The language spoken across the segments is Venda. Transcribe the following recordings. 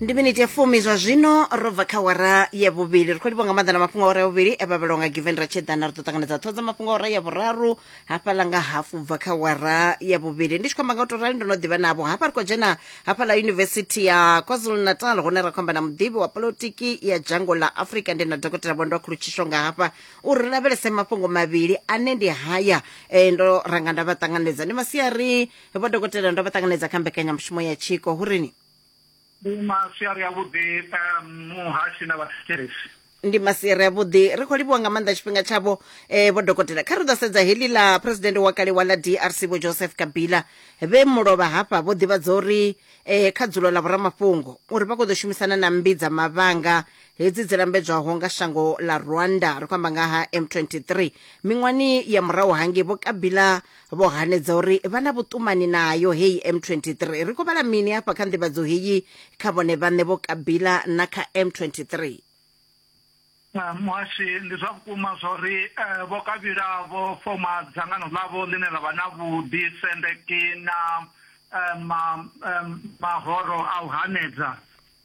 ndi miniti ya fumi zwa zwino ro bva kha wara ya vhuvhili ri khou livha nga maanḓa na mafhungo a wara ya vhuvhili e vhavhelwa nga given ra tshedana ri ḓo ṱanganedza ṱhoho dza mafhungo a wara ya vhuraru hafhaḽa nga hafu bva kha wara ya vhuvhili ndi tshi khou amba nga u tou rali ndo no ḓivha navho hafha ri khou dzhena hafhaḽa yunivesithi ya kwazulu natal hune ra khou amba na muḓivhi wa polotiki ya dzhango ḽa afurika ndi na dokotela vhondo khulutshisho nga hafha uri ri lavhelese mafhungo mavhili ane ndi haya eh, ndo ranga nda vha ṱanganedza ndi masiari vho dokotela ndo vha ṱanganedza kha mbekanyamushumo ya tshiko hu rini ndi masiari avhuḓi um, muhashi na vhathetshelesi ndi masiari avhuḓi ri khou livhuwa nga maanḓa tshifhinga tshavho um vho dokotela kha ri ḓo sedza heḽi ḽa phuresidennde wa kale wa ḽa drc vho joseph kabila vhe mulovha hafha vho ḓivhadza uri um kha dzulo ḽa vhoramafhungo uri vha khou ḓo shumisana na mmbi dza mavhanga hedzi dzi lambedzwaho nga shango ḽa rwanda ri khou amba nga ha m23 miṅwani ya murahu hangei vho kabila vho hanedza uri vha na vhuṱumani nayo heyi m23 ri khou vhala mini hafha kha nḓivhadzo heyi kha vhone vhaṋe vho kabila na kha m23 ah, muhashi ndi zwa vhukuma zwa uri eh, vho kabila vho foma dzangano ḽavho ḽine ḽa vha na vhuḓi sendeki na eh, mahoro a u hanedza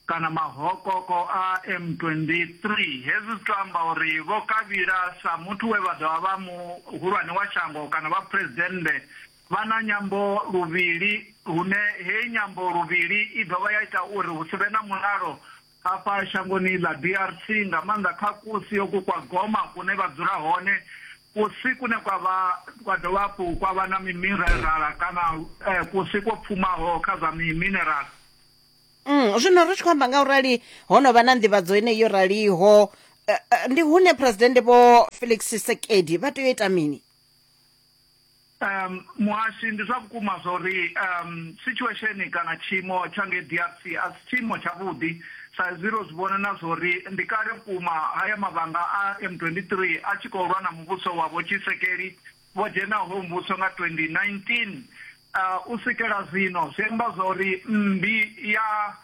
Kana mahokoko a M23. Hezwi zwi tou amba uri Vho Kabila sa muthu we vha ḓo vha vha muhulwane wa shango kana vha phresidennde vha na nyambo luvhili hune heyi nyambo luvhili i dovha ya ita uri hu si vhe na mulalo hafha shangoni ḽa DRC nga maanḓa kha kusi hoku kwa Goma kune vha dzula hone, kusi kune kwa vha kwa dovha hafhu kwa vha na mimirerala kana kusi kwo pfumaho kha zwa miminerala. Mm, zwino ri tshi khou amba nga u rali ho no vha na nḓivhadzo yeneyi yo raliho eh, eh, ndi hune phuresidennde vho felix sekedi vha tea u ita mini um muhashi ndi zwa vhukuma zwa uri um situation kana tshiimo tsha ngei drc a si tshiimo tshavhuḓi sa izwi ro zwi vhona na zwa uri ndi kale vhukuma haya mavhanga a m23 a tshi khou lwa na muvhuso wa vhotshisekeli vho dzhenaho muvhuso nga 2019. U swikela zwino, zwi amba zwa uri mmbi ya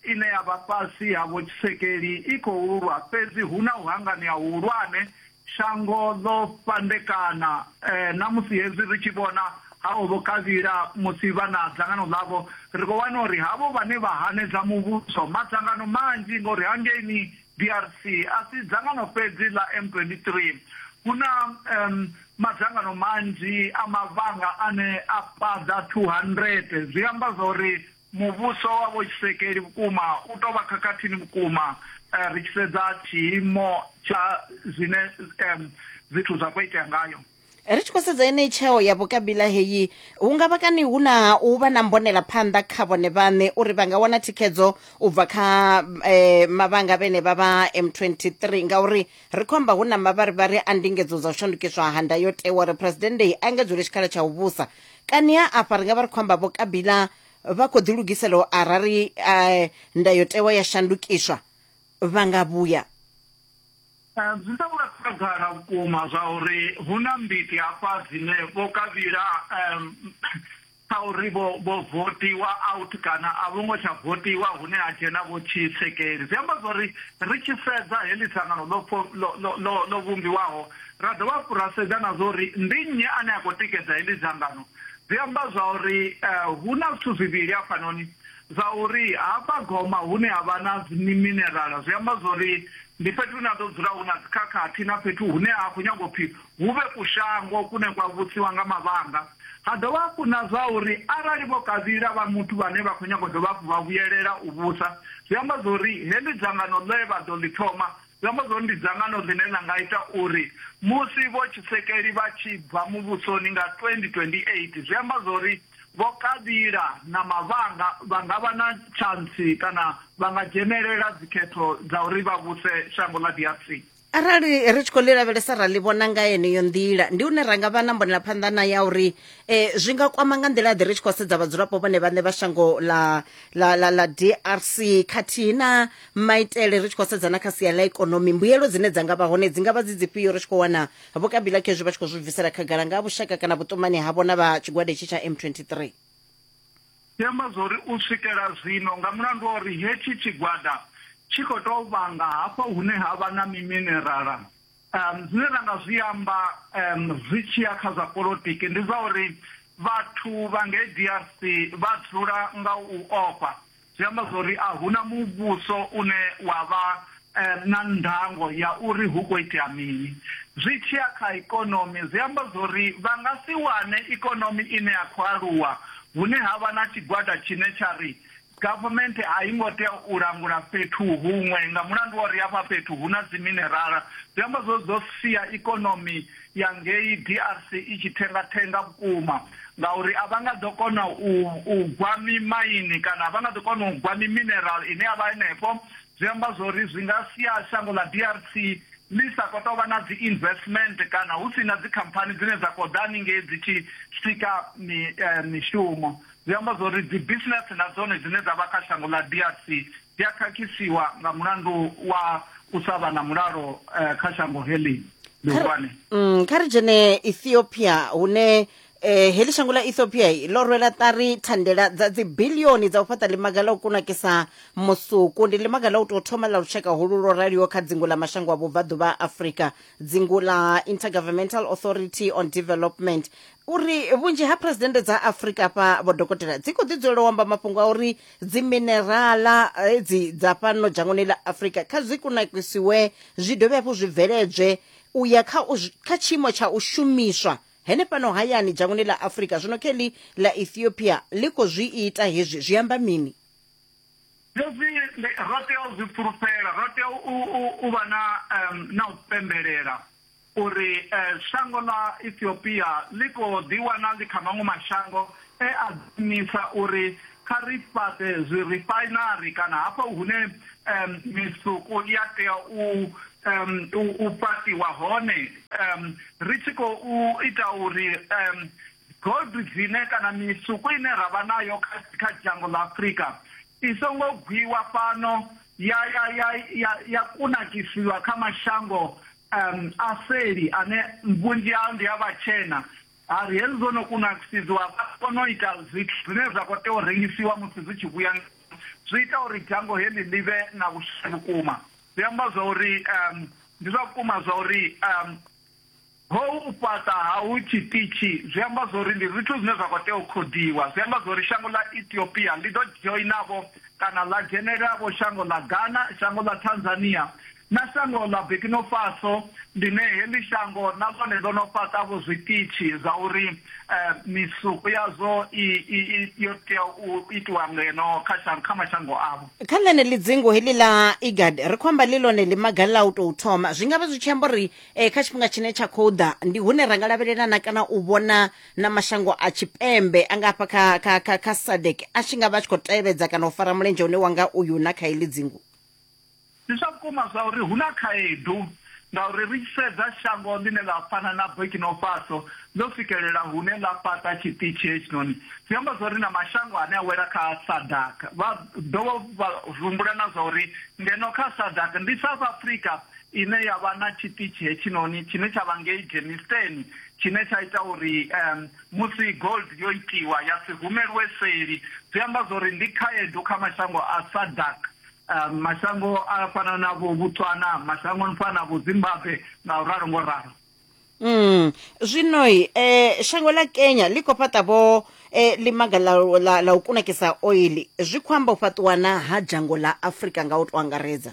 ine ya vha fhasi ha Vho Tshisekeli i khou lwa, fhedzi hu na u hanganea huhulwane. Shango ḽo fhandekana, na musi hezwi ri tshi vhona ha o Vho Kabila musi vha na dzangano ḽavho, ri khou wana uri havho vhane vha hanedza muvhuso, madzangano manzhi, ngauri hangeini DRC a si dzangano fhedzi ḽa M23. Hu na madzangano manzhi a mavhanga ane a paḓa 200. Zwi amba zwa uri muvhuso wa vhotshisekeli vhukuma u tou vha khakhathini vhukuma ri tshi sedza tshiimo tsha zwine zwithu zwa khou itea ngayo. ri tshi khou sedza yeneyi tsheo ya vhukabila heyi hu nga vha kani hu na u vha na mbonela phanḓa kha vhone vhaṋe uri vha nga wana thikhedzo u bva kha eh, mavhanga vhene vha vha m23 ngauri ri khou amba hu na mavharivhari a ndingedzo dza u shandukiswa ha ndayotewa uri phuresidennde i engedzwele tshikhala tsha u vhusa kani ha afha ri nga vha ri khou amba vho kabila vha khou ḓilugisela arali eh, ndayotewa ya shandukiswa vha nga vhuya Zwi ḓo vha khagala vhukuma zwa uri hu na mbiti hafha dzine vho kavhila kha uri vho vho votiwa out kana a vho ngo tsha votiwa hune ha dzhena vho tshisekeli zwi amba zwa uri ri tshi sedza heḽi dzangano ḽo vhumbiwaho ra dovha hafhu ra sedza na zwa uri ndi nnyi ane a khou tikedza heḽi dzangano zwi amba zwa uri hu na zwithu zwivhili hafhanoni Zwa uri hafha Goma hune ha vha na dziminerala zwi amba zwa uri ndi fhethu hune ha ḓo dzula hu na dzikhakhathi na fhethu hune ha khou nyanga u pfi hu vhe kushango kune kwa vhusiwa nga mavhanga. Ha dovha hafhu na zwa uri arali Vho Kabila vha muthu vhane vha khou nyanga u dovha hafhu vha vhuyelela u vhusa, zwi amba zwa uri heḽi dzangano ḽe vha ḓo ḽi thoma zwi amba zwa uri ndi dzangano ḽine ḽa nga ita uri musi Vho Tshisekeli vha tshi bva muvhusoni nga 2028 zwi amba zwa uri Vho Kabila na Mavhanga vha nga vha na tshantsi kana vha nga dzhenelela dzikhetho dza uri vha vhuse shango ḽa DRC. Arali ri tshi khou ḽi lavhelesa ra ḽi vhona nga yeneyo nḓila, ndi hune ra nga vha na mbonelaphanḓa na ya uri eh, zwi nga kwama nga nḓila ḓe ri tshi khou sedza vhadzulapo vhone vhaṋe vha shango ḽa, ḽa, ḽa, ḽa DRC khathihi na maitele ri tshi khou sedza na kha sia ḽa ikonomi. Mbuyelo dzine dza nga vha hone dzi nga vha dzi dzifhio ri tshi khou wana Vho Kabila khezwi vha tshi khou zwi bvisela khagala nga ha vhushaka kana vhuṱumani havho na vha tshigwada itshi tsha M23. Zwi amba zwa uri u swikela zwino nga mulandu wa uri hetshi tshigwada tshi khou tou vhanga hafha hune ha vha na miminerala, zwine ra nga zwi amba zwi tshi ya kha zwa polotiki ndi zwa uri vhathu vha ngei DRC vha dzula nga u ofha. Zwi amba zwa uri a hu na muvhuso une wa vha na ndango ya uri hu khou itea mini. Zwi tshi ya kha ikonomi, zwi amba zwa uri vha nga si wane ikonomi ine ya khou aluwa hune ha vha na tshigwada tshine tsha ri government a i ngo tea u langula fhethu huṅwe nga mulandu wa uri hafha fhethu hu na dziminerala. Zwi amba zwa uri zwo sia ikonomi ya ngei DRC i tshi thenga-thenga vhukuma ngauri a vha nga ḓo kona u, u gwa mimaini kana a vha nga ḓo kona u gwa mimineral ine ya vha henefho zwi amba zwori zwi nga sia shango ḽa DRC ḽi sa khou tou vha na dzi investment kana hu si na dzikhamphani dzine dza khou ḓa haningei dzi tshi sika mi, eh, mishumo zwi amba zwori dzi business na dzone dzine dza vha kha shango ḽa DRC dzi a khakhisiwa nga mulandu wa u sa vha na mulalo eh, kha shango heḽi ḽihulwane Mm, kha ri dzhene ethiopia hune eh, heḽi shango ḽa ethiopia i ḽo rwela ṱari thandela dza dzibilioni dza u fhaṱa ḽimaga ḽa u kunakisa musuku ndi ḽimaga ḽa u tou thoma ḽa lushaka hulu lwo raliho kha dzingu ḽa mashango a vhubvaḓuvha ha afrika dzingu ḽa intergovernmental authority on development uri vhunzhi ha phuresidennde dza afrika hafha vho dokotela dzi khou ḓi dzulela u amba mafhungo a uri dziminerala hedzi dza fhano dzhangoni ḽa afurika kha dzi kunakisiwe zwi dovhe hafhu zwi bveledzwe u ya kha kha tshiimo tsha u shumiswa hene fhano hayani dzhangoni ḽa afurika zwino kheḽi ḽa ethiopia ḽi khou zwi ita hezwi zwi amba mini hezwi ro tea u zwi fulufhela ro tea u vha na na u pembelela U ri, Shango ḽa Ethiopia ḽi khou ḓiwana ḽi kha maṅwe mashango e a ḓiimisa uri kha ri fhaṱe zwirifainari kana hafho hune misuku ya tea u fhaṱiwa hone, ri tshi khou ita uri gold dzine kana misuku ine ra vha nayo kha dzhango ḽa Afrika i songo gwiwa fhano ya kunakisiwa kha mashango um, aseli ane vhunzhi hao ndi a vhatshena a ri hezwi zwo no kunakisidziwa vha kona u ita zwithu zwine zwa khou tea u rengisiwa musi zwi tshi vhuya zwi ita uri dzhango heḽi ḽi vhe na vhushe vhukuma zwi amba zwa uri um, ndi zwa vhukuma zwa uri um, hou u fhaṱa ha hu tshiṱitshi zwi amba zwa uri ndi zwithu zwine zwa khou tea u khodiwa zwi amba zwa uri shango ḽa ethiopia ḽi ḓo joinavho kana ḽa dzhenelavho shango ḽa ghana shango ḽa tanzania Na shango ḽa Bikinofaso, ḽine heḽi shango na ḽone ḽo no fhaṱa-vho zwiṱitshi zwa uri misuku yazwo i yo tea u itiwa ngeno kha mashango avho. Kha ḽeneḽi dzingu heḽi ḽa IGAD, ri khou amba ḽi ḽone ḽimaga ḽa u tou thoma, zwi nga vha zwi tshi amba uri kha tshifhinga tshine tsha khou ḓa ndi hune ra nga lavhelela na kana u vhona na mashango a tshipembe a nga hafha kha kha kha kha SADC a tshi nga vha a tshi khou tevhedza kana u fara mulenzhe une wa nga uyu na kha heḽi dzingu. Ndi zwa vhukuma zwa uri hu na khaedu ngauri ri tshi sedza shango ḽine ḽa fana na Burkino Faso ḽo swikelela hune ḽa fhaṱa tshiṱitshi hetshinoni, zwi amba zwa uri na mashango ane a wela kha SADAG vha ḓo vha humbula na zwa uri ngeno kha SADAG ndi South Africa ine ya vha na tshiṱitshi hetshinoni tshine tsha vha ngei Germiston tshine tsha ita uri um, musi gold yo itiwa ya si humelwe seli. Zwi amba zwa uri ndi khaedu kha mashango a SADAG uh, mashango a fana na vho botswana mashango ni fana na vho zimbabwe nga u ralo ngo ralo mm. zwinoi eh, shango la kenya ḽi khou fhaṱa vho eh, limaga la, la, la u kunakisa oili zwi khou amba u fhaṱiwana ha dzhango ḽa afurika nga u to angaredza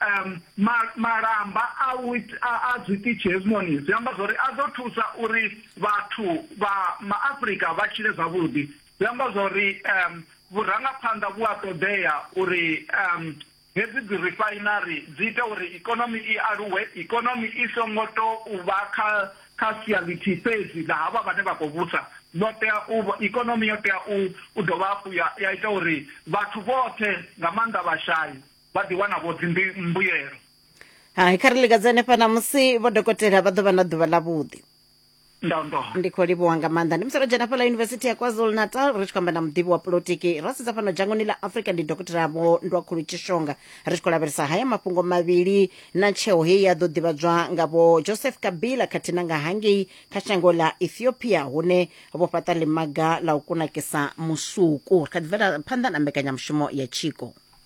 um, ma, malamba a, a, a zwiṱitshi hezwinoni zwi amba zwori a ḓo thusa uri vhathu vha maafrika vha tshile zwavhuḓi zwi amba zwori um vhurangaphanḓa vhu a ṱoḓea uri um hedzi dzi refinery dzi ita uri ikonomi i aluwe ikonomi i songo to u vha kha kha sia ḽithihi fhedzi ḽa havha vhane vha khou vhusa ḽo tea u ikonomi yo tea u dovha hafhu ya ita uri vhathu vhoṱhe nga maanḓa vhashai vha ḓi wana vho dzi mbuyelo hai kha ri likadze hanefha ṋamusi vho dokotela vha ḓo vha na ḓuvha ḽavhuḓi ndi khou livhuwa nga maanḓa ndi musi ro dzhena fhala yunivesithi ya kwazulu natal ri tshi khou amba na muḓivhi wa polotiki ra sedza fhano dzhangoni ḽa afrika ndi dokotela vho ndwakhulu tshishonga ri tshi khou lavhelesa haya mafhungo mavhili na tsheo heyi ya ḓo ḓivhadzwa nga vho joseph kabila khathihi na nga hangei kha shango ḽa ethiopia hune vho fhaṱa ḽimaga ḽa u kunakisa musuku ri kha ḓi bvela phanḓa na mbekanyamushumo ya tshiko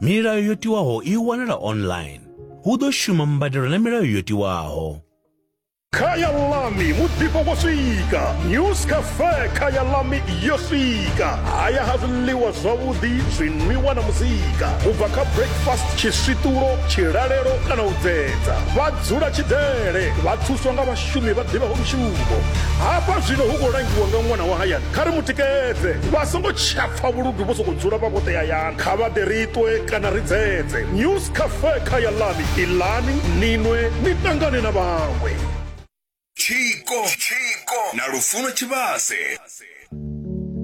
Milayo yo tiwaho i wanala online. Hu ḓo shuma mbadelo na milayo yo tiwaho. Khaya Lami muḓifho wo swika News Cafe Khaya Lami yo swika haya ha zwiḽiwa zwavhuḓi zwinwiwa na muzika u bva kha breakfast tshiswiṱulo tshilalelo kana u dzedza vha dzula tshidzele vha thuswa nga vhashumi vha ḓivhaho mushumo hafha zwino hu khou langiwa nga ṅwana wa hayani kha ri mu tikedze vha songo tshapfa vhuludu vho sokou dzula vha vhoṱe hayani Kha vha ḓe ri ṱwe kana ri dzedze. News Cafe kha ya Lani, Iḽani, ni nwe ni ṱangane na vhaṅwe. Tshiko na Lufuno Tshivhase.